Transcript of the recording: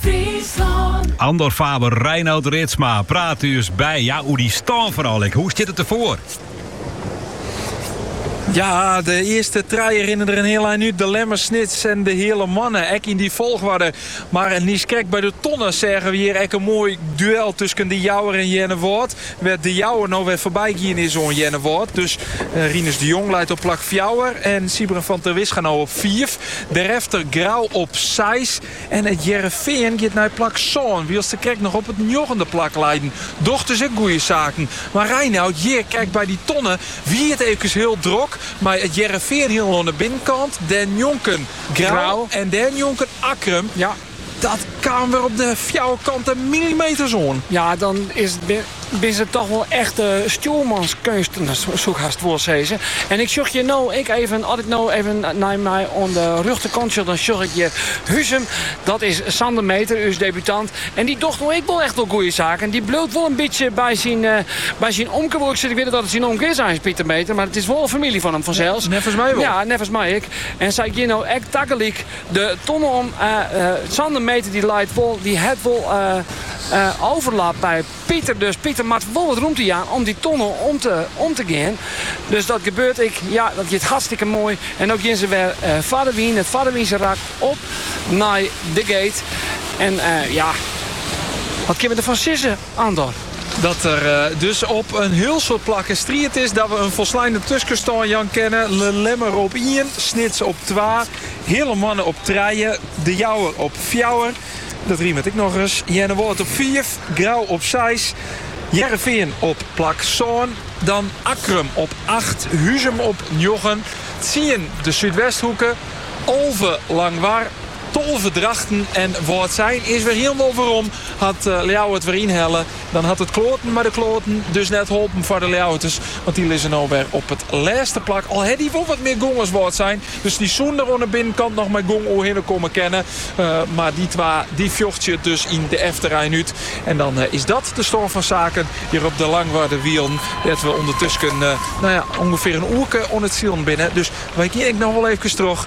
Fryslân. Andor Faber, Reinout Ritsma praat ús by ja, oer dy stân foaral ek. Hoe stiet it derfoar? Ja, de earste trije rinne der in hiel ein út. De Lemmer, Snits en de Heale Moanne. Ek yn dy folchoarder. Mar niiskrekt by de tonne seagen we hjir ek in moai duel tusken De Jouwer en Earnewâld. Wêr't De Jouwer no wer foarby gien is oan Earnewâld. Dus Rinus de Jong leit op plak fjouwer en Siebren van Terwisga no op fiif. Derefter Grou op seis. En it Hearrenfean giet nei plak sân, wylst se krekt noch op it njoggende plak leiden. Docht dus ek goede saken. Mar Reinout, hjir, krekt by dy tonne, wie it eefkes hiel drok mei it Hearrenfean hielendal oan de binnenkant, dêrnjonken Grou en dêrnjonken Akkrum. Dat kaam wer op de fjouwerkante millimeters oan. Ja, dan is it binne it toch wol echte stjoermanskeunsten, soe ik hast wol sizze. En ik sjoch hjir no ek even, as ik no even nei my oan de rjochterkant sjoch, dan sjoch ik hjir Huzum. Dat is Sander Meeter, ús debutant. En dy docht no ek wol echt wol goeie saken. Dy bliuwt wol in bytsje by syn, by syn omke, wol ik sizze. Ik wit net oft it syn omke is, eins Pieter Meeter, mar it is wol in famylje fan him fansels. Neffens my wol. Ja, neffens my ek. En sy geane no ek tagelyk. de tonne om, Sander Meeter dy leit wol, dy hat wol overlap by Pieter. Dus Pieter moat wol wat rûmte jaan om dy tonne om te gean. Dus dat gebeurt ek. Ja, dat giet hartstikke moai. En no geane se wer foar de wyn, it foardewynse rak, op nei de gate. En ja, wat kinne we derfan sizze, Andor? Dat der dus op in hiel soad plakken striid is, dat we in folsleine tuskenstân jaan kinne, De Lemmer op ien, Snits op twa. Heale Moanne op trije, De Jouwer op fjouwer, dat rimet ek noch ris, Earnewâld op fiif, Grou op seis, Hearrenfean op plak sân, dan Akkrum op acht, Huzum op njoggen, tsien de Súdwesthoeke, alve Langwar, tolve Drachten en Wâldsein is wer hielendal werom, hat Ljouwert wer ynhelle. Dan hat it kloaten mei de kloaten dus net holpen foar de Ljouwerters, want dy lizze no wer op it lêste plak. Al hawwe dy wol wat mear gong as Wâldsein, dus dy soene der oan de binnenkant noch mei gong oerhinne komme kinne. Mar dy twa dy fjochtsje it dus yn de efterrein út. En dan is dat de stân fan saken hjir op de Langwarder Wielen, dêr't we ûndertusken ûngefear in oerke oan it silen binne. Dus wy geane ek noch wol eefkes troch